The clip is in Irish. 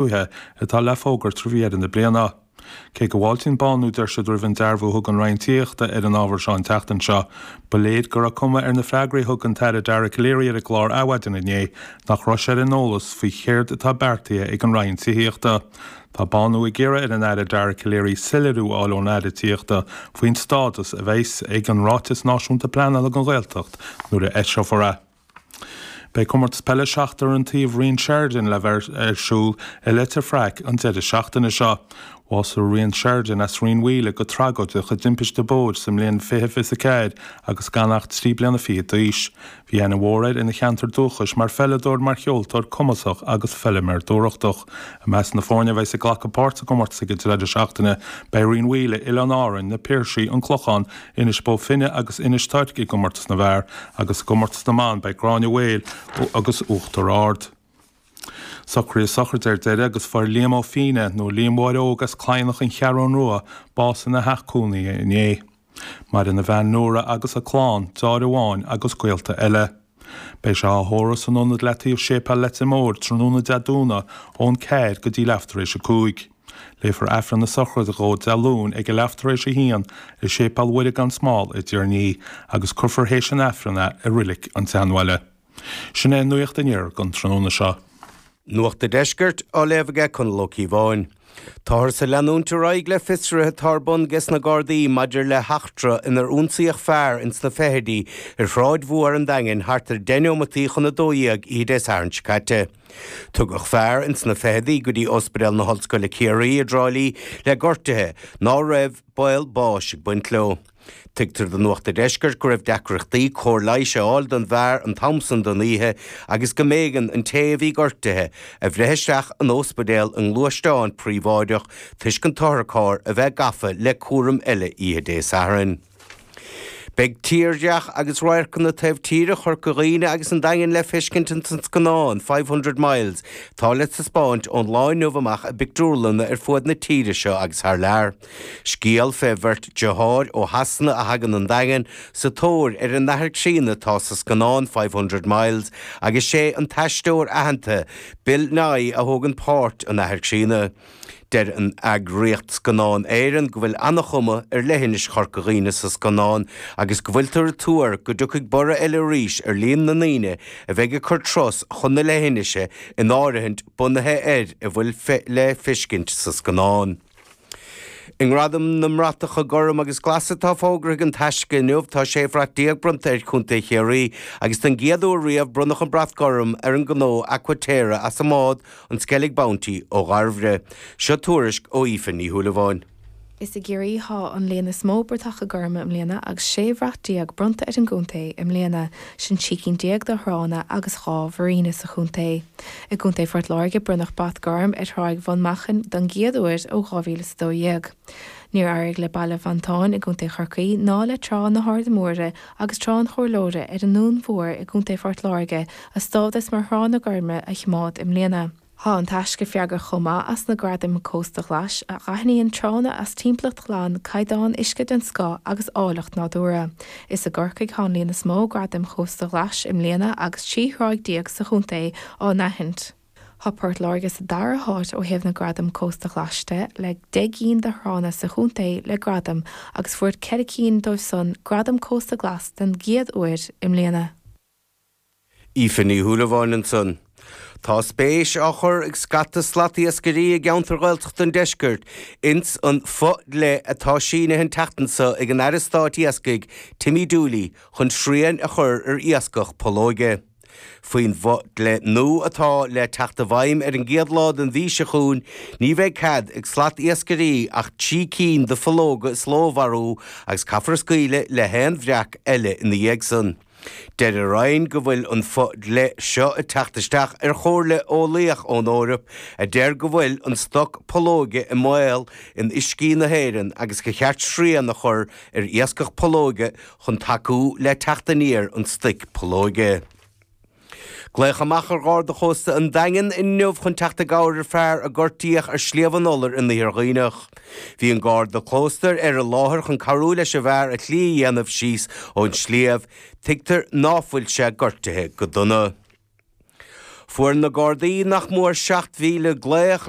tuaithe atá le fógairt roimh dheireadh na bliana. Cé go bhfáiltíonn Bánú, dúirt siad, roimh an dearbhú a thug an Roinn Tithíochta ar an ábhar seo an tseachtain seo, ba léir go raibh cuma ar na freagraí a thug an tAire Dara Calleary ar an gclár Adhmhaidin inné nach raibh sé ar an eolas faoi chéard atá beartaithe ag an Roinn Tithíochta. Tá Bánú ag iarraidh ar an Aire Dara Calleary soiléiriú a fháil ón Aire Tithíochta faoin stádas a bheas ag an Ráiteas Náisiúnta Pleanála don Ghaeltacht nuair a eiseofar é. Beidh Comórtas Peile Seachtar an Taobh Ryan Sheridan le bheith ar siúl i Leitir Fraic an deireadh seachtaine seo. Bhásaigh Ryan Sheridan as Rinn Mhaoile go tragóideach i dtimpiste bóthair sa mbliain 2024 agus gan ach trí bliana fichead d'aois. Bhí aithne mhór air ina cheantar dúchais mar pheileadóir, mar cheoltóir cumasach agus feiliméir dúthrachtach. I measc na foirne a bheas ag glacadh páirt sa gcomórtas ag an deireadh seachtaine beidh Rinn Mhaoile, Oileáin Árann, Na Piarsaigh, An Clochán, Inis Bó Finne agus Inis Toirc i gComórtas na bhFear agus i gComórtas na mBan beidh Gráinne Mhaol agus Uachtar Ard. Socruithe sochraide ar deireadh agus fuair Liam Ó Finneadha, nó Liam Mháire Óg as Cladhnach An Cheathrú Rua, bás ina theach cónaithe inné. Maireann a bhean Nóra agus a clann, deartháir amháin agus gaolta eile. Beidh sé á thórramh san ionad le taobh Séipéal Leitir Móir tráthnóna Dé Domhnaigh ón 4 go dtí leath tar éis 5. Léifear Aifreann na Sochraide dhó Dé Luain ag a leath tar éis 1 i Séipéal Mhuire gan Smál i dTír an Fhia agus cuirfear théis an Aifrinn é i Reilig an tSeanbhaile. Sin é an nuacht aniar don tráthnóna seo. Nuacht an Deiscirt á léamh aige Conall Ó Cíobháin. Táthars ag leanúint ar aghaidh le fiosruithe atá ar bun ges na Gardaí maidir le heachtra inar ionsaíodh fear ins na fichidí ar Shráid Mhór an Daingin thart ar 10 neomataí chun 12 oíche Dé Sathairn seo caite. Tugadh fear ins na fichidí go dtí Ospidéal na hOllscoile Ciarraí i dTrá Lí le gortuithe ná raibh baol báis ag baint leo. Tuigtear do Nuacht an Deiscirt go raibh deacrachtaí cóir leighis a fháil don bhfear an t-am san den oíche agus go mb'éigean an té a bhí gortaithe a bhreith isteach in óspidéal i ngluaisteán príobháideach toisc an t-otharcharr a bheith gafa le cúram eile oíche Dé Sathairn. Beidh tírdhreach agus radharcanna taobh tíre Chorca Dhuibhne agus an Daingin le feiscint ins an scannán Five Hundred Miles atá le taispeáint ón lá inniu amach i bpictiúrlanna ar fuaid na tíre seo agus thar lear. Scéal fé bheirt deartháir ó Shasana a thagann 'on Daingean sa tóir ar a n-athair críonna atá sa scannán Five Hundred Miles agus sé an t-aisteoir aitheanta Bill Nighy a thógann páirt an athair críonna. Deir an eagraíocht Scannán Éireann go bhfuil an-chuma ar leithinis Chorca Dhuibhne sa scannán agus go bhfuiltear ag tuar go dtiocfaidh borradh eile arís ar líon na ndaoine a bheidh ag cur turas chun na leithinise in áirithint bunaithe ar a bhfuil le feiscint sa scannán. I nGradam na mBratacha Gorm agus Glas atá fógartha ag An Taisce inniu, tá sé bhrat déag bronnta ar Chontae Chiarraí agus den gcéad uair riamh bronnadh an brat gorm ar an gnó Aqua Terra as an mbád, an Skellig Bounty ó Dhairbhre. Seo tuairisc ó Aoife Ní Shúilleabháin. Is i gCiarraí atá an líon is mó bratacha gorma i mbliana agus sé bhrat déag bronnta ar an gcontae i mbliana, sin trí cinn déag de thránna agus dhá mhuiríne sa chontae. I gContae Phort Láirge bronnadh Brat Gorm ar Thráigh Bhun Machain don gcéad uair ó 2012. Níor éirigh le Baile Mhontáin i gContae Chorcaí ná le Trá na hArda Móire agus Trá an Chomhairleora ar an nDún Mhór i gContae Phort Láirge a stádas mar thránna gorma a choimeád i mbliana. Tá An Taisce freagrach chomh maith as na Gradaim Cósta Ghlais, a aithníonn tránna as timpeallacht ghlan, caighdeán uisce den scoth agus áilleacht nádúrtha. Is i gCorcaigh atá an líon is mó Gradaim Chósta Ghlais i mbliana agus 13 thráigh sa chontae á n-aithint. Tá Port Láirge sa dara háit ó thaobh na Gradam Cósta Ghlais de, le 10 gcinn de thránna sa chontae le gradam agus fuair ceithre cinn díobh san Gradam Cósta Glas den gcéad uair i mbliana. Aoife Ní Shúilleabháin ansan. Tá spéis á chur ag scata slatiascairí i gceantair Ghaeltachta an deiscirt ins an bhfo-dhlí atá sínithe an tseachtain seo ag an Aire Stáit Iascaigh Timmy Dooley chun srian a chur ar iascach pollóige. Faoin bhfo-dhlí nua atá le teacht i bhfeidhm ar an gcéad lá den mhí seo chugainn ní bheidh cead ag slatiascairí ach trí cinn de phollóga sa ló a mharú agus caithfear scaoileadh le haon bhreac eile ina dhiaidh san. Deir an Roinn go bhfuil an fo-dhlí seo ag teacht isteach ar chomhairle eolaíoch ón Eoraip a deir go bhfuil an stoc pollóige i mbaol in uiscí na hÉireann agus gur cheart srian a chur ar iascach pollóige chun tacú le teacht aniar an stoic pollóige. Glaodh amach ar Gharda Chósta an Daingin inniu chun teacht i gcabhair ar fhear a gortaíodh ar Shliabh an Iolair in Iarthar Dhuibhneach. Bhí an Garda Cósta ar an láthair chun cabhrú leis an bhfear a shlí a dhéanamh síos ón sliabh, tuigtear ná fuil sé gortaithe go dona. Fuair na Gardaí nach mór 7,000 glaoch